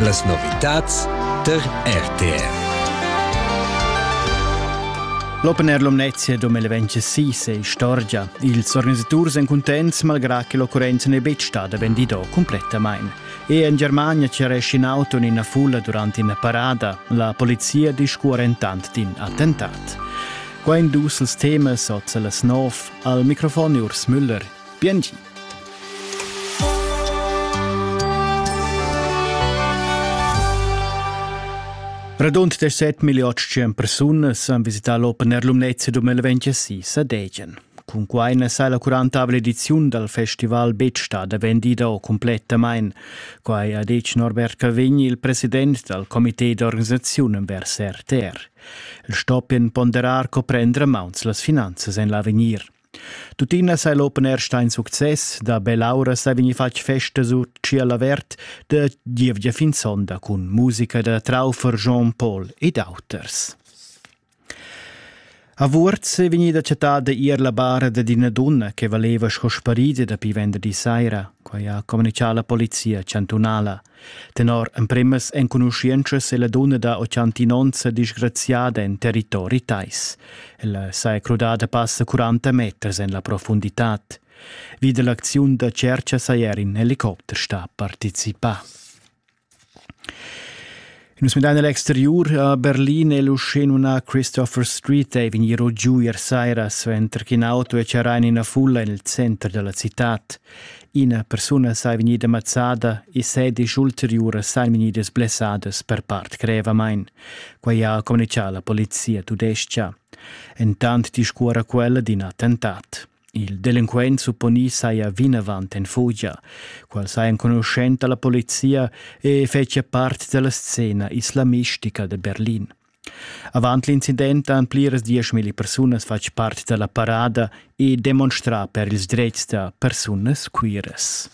Las novitads tar RTR. L'Open Air Lumnezia 2026 è istorgia. Ils organisaturs èn cuntents malgrà che l'occurrenza n'è betg stada vendida cumplettamain. E en Germania ceresce in auto in ina fulla durant ina parada. La polizia discurre entant d'in attentat. Qua in dus temas oz las nov. Al microfon Urs Müller. Biengi. Radund 17 million persunas han visità l'Open Air Lumnezia 2026 a Degen. Cun quai na sa la 40 ediziun dal festival betg stada vendida o complettamain. Quai ha detg Norbert Cavegn, il president dal comité d'organisaziun vers RTR. El stoppien ponderar co prendere mauns las finanzas en l'avegnir. Tuttina sei l'open air sta in success, da bell'aura sei vegni fatg festa sur Ciel avert da gievgia fin sonda cun musica da Traufer, Jean-Paul ed auters. A Vuorz è vegnida chattata ier la bara da d'ina donna che valeva sco sparida dapi venderdi saira, quai ha comunicà la polizia chantunala. Tenor empremas enconuschientschas è la dunna da 89 disgraziada en territori tais. Ella sa è crudada passa 40 meters en la profunditad. Vid l'acziun da cerca saja er in helicopter sta participà. Nus midan el exteriur a Berlin e luschin una Christopher Street e vegnir giu ier saira suenter ch'in auto è charrà en ina fulla en il center della cittad. Ina persuna sei vegnida mazzada e sedisch ulteriuras sein vegnidas blessadas per part grevamain. Quai ha communicato la polizia tudesca. Entant discuora quella d'in attentat. Il delinquent supponì saja vinavant en fugia. Quel saja enconuschent da la polizia e fetschia part da la scena islamistica da Berlin. Avant l'incident han pliras dieschmilli persunas fatg part da la parada e demonstrà per ils dretgs da persunas queeras.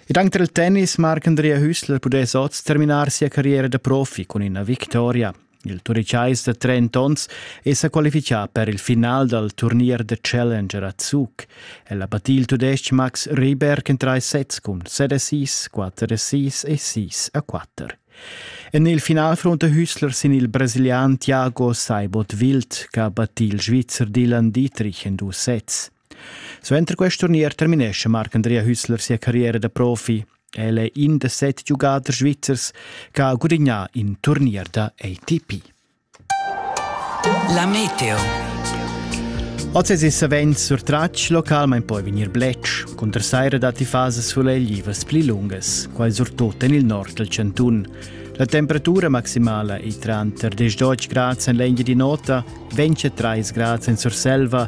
Dank del Tennis mag Andrea Hüssler pudess oz terminar sia carriera da profi cun ina victoria. Il Turichais da 30 onns è sa qualifichà per il final dal turnier da Challenger a Zug. El ha battì il tudestg Max Rieberg en trais sets cun 7 assist, 4 assist e 6 a 4. En il final frunta Hüssler sin il brasilian Thiago Saibot Wild, che ha battì il Svizzer Dylan Dietrich en dus sets. Suenter quest turnier terminescha Marc-Andrea Hüssler sia carriera da profi. El è in da set giugaders svizzers che ha gudagnà in turnier da ATP. La Meteo. Oz es il savens surtratg localmain poi vegnir bletsch, cun der saira datti fases suleglivas pli lungas, quai surtut en il nord dal chantun. La temperatura maximala è tranter 10 grads en l'engia di nota, 23 grads en Surselva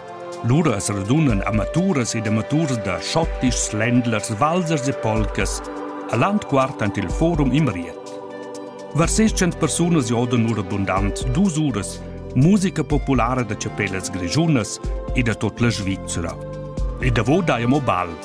Lura as radunan amaturas ed amaturas da schottischs, ländlers, valzers e polcas a Landquart ant il Forum in Riet. Var seschent persunas jodan ora bundant dus uras musica populara da chapellas grischunas e da tot la Svizzera. E davo dai amo bal.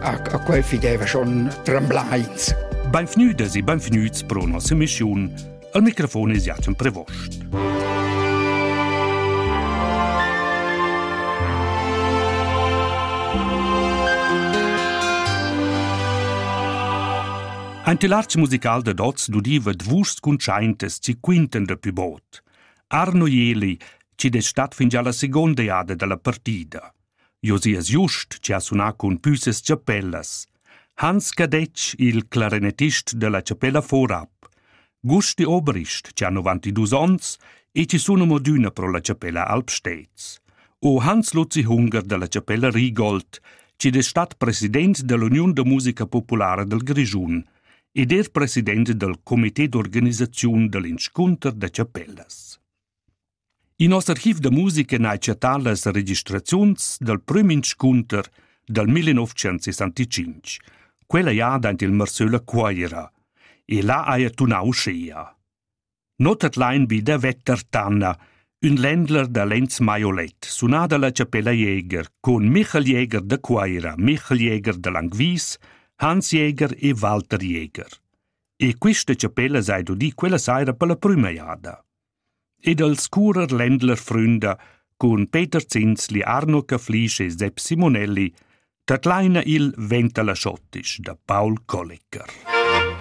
a, a quei fideva schon tremblains. Beinvgnüdas e beinvgnüts pro nossa missiun. Al microfon es Jachen Prevost. Ein tilarz musical da dots dudiva dvus cuntschaintas ci quinten da pü bod. Arno Jeli, ci des stat fin già la seconda jada dalla partida. Josi es giust chi ha sunà cun pü ses chapellas. Hans Cadetsch, il clarinetist della chapella Vorab. Gusti Oberist, chi ha 92 ons e chi sun amo adüna pro la chapella Alpsteds. O Hans Luzi Hunger della chapella Rigold, chi es stat president dell'Uniun da musica populara del Grischun ed er president del comité d'organisaziun dell'inscunter da chapellas. In noss archiv da musica n'ha chattà las registraziuns dal prüm inscunter dal 1965, quella jada aint il Marsöl a Cuaira, e là haja tunà uschea. Not at lain be da Vetter Tanna, ün ländler da Lenz Maiolet, sunà dalla Chapella Jäger, con Michael Jäger da Cuaira, Michael Jäger da Langwies, Hans Jäger e Walter Jäger. E quista chapella s'ha udì quella saira per la prüma jada. ed als curer Ländler fründa cun Peter Zinsli, Arno Caflisch e Sepp Simonelli, tadlaina il Ventala Schottisch da Paul Kollecker.